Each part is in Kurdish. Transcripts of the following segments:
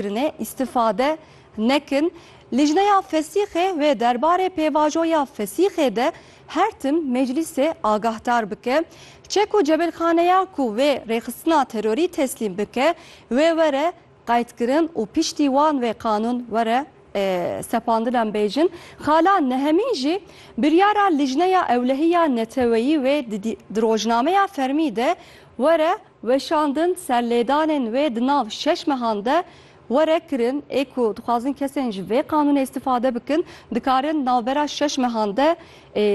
kirine îstifade nekin. Lijneya Fesîxê wê derbarê pêvajoya Fesîxê de her tim meclîsê agahdar bike. Çek û cebirxaneya ku wê rêxistina terorî teslîm bike wê were qeydkirin û piştî wan wê qanûn were sepandin em bêjin. Xala Nehemîn jî biryara Lijneya Ewlehiya Neteweyî wê di rojnameya fermî de were Weşandin ser lêdanên wê di nav şeş mehan de were kirin. Ê ku dixwazin kesên ji vê qanûnê îstîfade bikin, dikarin di navbera şeş mehan de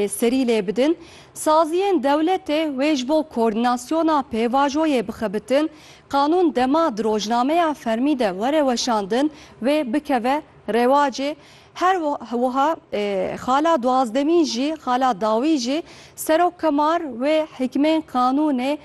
serî lê bidin. Saziyên dewletê wê ji bo koordînasyona pêvajoyê bixebitin. Qanûn dema di rojnameya fermî de were weşandin, wê bikeve rewacê. Her wiha xala duwazdemîn jî xala dawî jî Serok Kemar wê hikmên qanûnê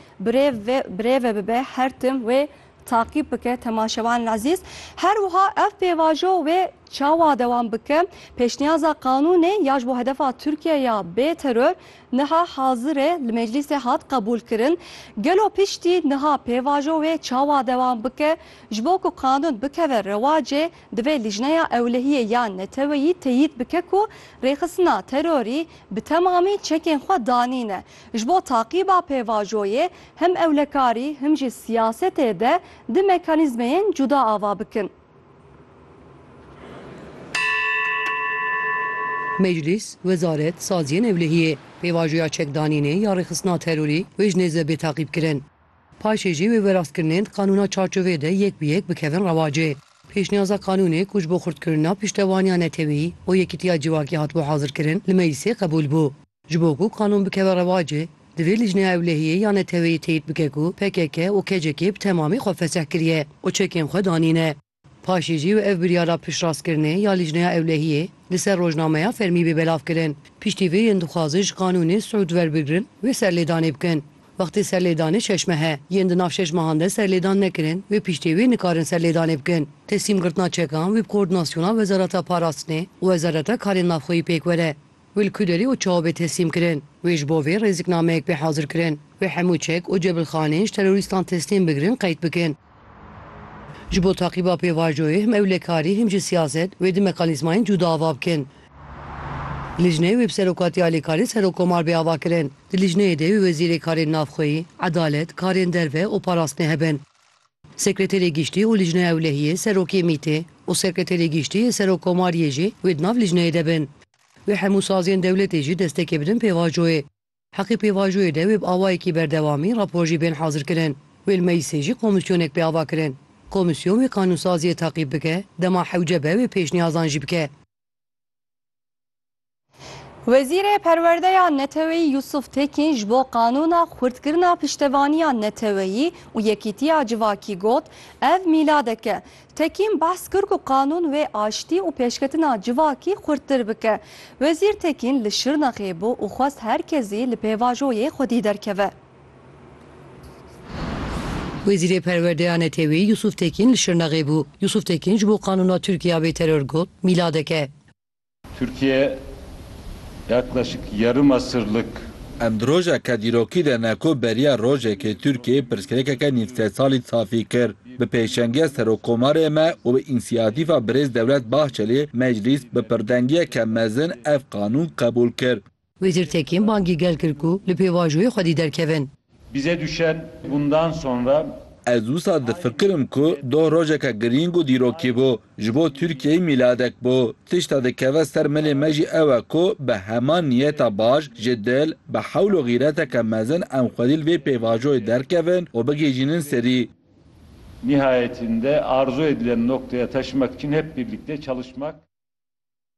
birêve bibe her tim wê taqîb bike temaşevanên ezîz. Her wiha ev pêvajo wê çawa dewam bike pêşniyaza qanûnê ya ji bo hedefa Tirkiye ya bê teror niha hazir e li meclîsê hat qebûlkirin. Gelo piştî niha pêvajo wê çawa dewam bike ji bo ku qanûn bikeve rewacê Divê Lîjneya Ewlehiyê ya Neteweyî teyîd bike ku rêxistina terorî bi temamî çekên xwe danîne. Ji bo taqîba pêvajoyê him ewlekarî him jî siyasetê de di mekanîzmeyên cuda ava bikin. Meclîs, Wezaret, Saziyên Ewlehiyê, pêvajoya çekdanînê ya rêxistina terorî wê ji nêzve bê taqîbkirin. Paşê jî wê wêrastkirinên di qanûna çarçoveyê de yek bi yek bikevin rewacê. Pêşniyaza qanûnê ku ji bo xurtkirina piştevaniya netewî û yekîtiya civakî hatibû hazirkirin li meclîsê qebûl bû. Ji bo ku qanûn bikeve rewacê, divê lijneya ewlehiyê ya neteweyî teyîd bike ku pkk û KCK'ê bi temamî xwe fesih kiriye û çekên xwe danîne. Paşê jî ev biryara piştrastkirinê ya Lîjneya Ewlehiyê li ser rojnameya fermî bê belavkirin. Piştî vê yên dixwazin ji qanûnê sûd werbigrin wê serlêdanê bikin. Wextê serlêdanê şeş meh e. Yên di nav şeş mehan de serlêdan nekirin wê piştê wê nikarin serlêdanê bikin. Teslîmgirtina çekan wê bi koordinasyona Wezareta Parastinê û Wezareta Karên Navxweyî pêk were. Wî li ku derî û çawa bê teslîm kirin. Wê ji bo vê rêziknameyek bê hazir kirin. Wê hemû çek û cebilxaneyên ji terorîstan teslîm bigirin qeyd bikin. Ji bo taqîba pêvajoyê him ewlekarî him jî siyaset wê di mekanîzmayên cûda ava bikin. Lijneyê wê bi serokatî alîkarê serokkomar bê ava kirin. Di lijneyê de wê wezîrê karên navxweyî, edalet, karên derve û parastinê hebin. Sekreterê Giştî û Lijna Ewlehiyê, Serokê Mîtê û Sekreterê Giştî yê Serokkomariyê jî wê di nav lijneyê de bin. Wê hemû saziyên dewletê jî destekê bidin pêvajoyê. Heqî pêvajoyê de wê bi awayekî berdewamî rapor jî bên hazirkirin. Wê li meclisê jî komîsyonek bê avakirin. Komîsyon wê kanûnsaziyê taqîb bike, dema hewce be wê pêşniyazan jî bike. Wezîrê Perwerdeya Neteweyî Yusuf Tekîn ji bo qanûna xurtkirina piştevaniya neteweyî û yekîtiya civakî got, Ev mîladek e. Tekîn behs kir ku qanûn wê aştî û pêşketina civakî xurttir bike. Wezîr Tekîn li Şirnexê bû û xwest her kesî li pêvajoyê xwedî derkeve. Wezîrê Perwerde ya Neteweyî Yusuf Tekîn li Şirnexê bû. Yusuf Tekîn ji bo Qanûna Tirkiye ya Bêteror got, Mîladek e. Tirkiye yaklaşık yarım asırlık. Em di rojeke dîrokî de ne ku beriya rojekê Tirkiyeyê pirsgirêkeke nîv sed salî safî kir. Bi pêşengiya Serokomarê me û bi însiyatîfa Birêz Dewlet Bahçelî, Meclîs bi pirdengiyeke mezin ev qanûn qebûl kir. Wê jîr Tekîn bangî gel kir ku li pêvajoyê xwedî derkevin. Bize düşen bundan sonra. Ez wisa difikirim ku doh rojeke girîng û dîrokî bû. Ji bo Tirkiyeyê mîladek bû. Tişta dikeve ser milê me jî ew e ku bi heman niyeta baş, ji dil, bi hewl û xîreteke mezin em xwedî li vê pêvajoyê derkevin û bigihîjînin serî. Nihayetinde arzu edilen noktaya taşımak için hep birlikte çalışmak.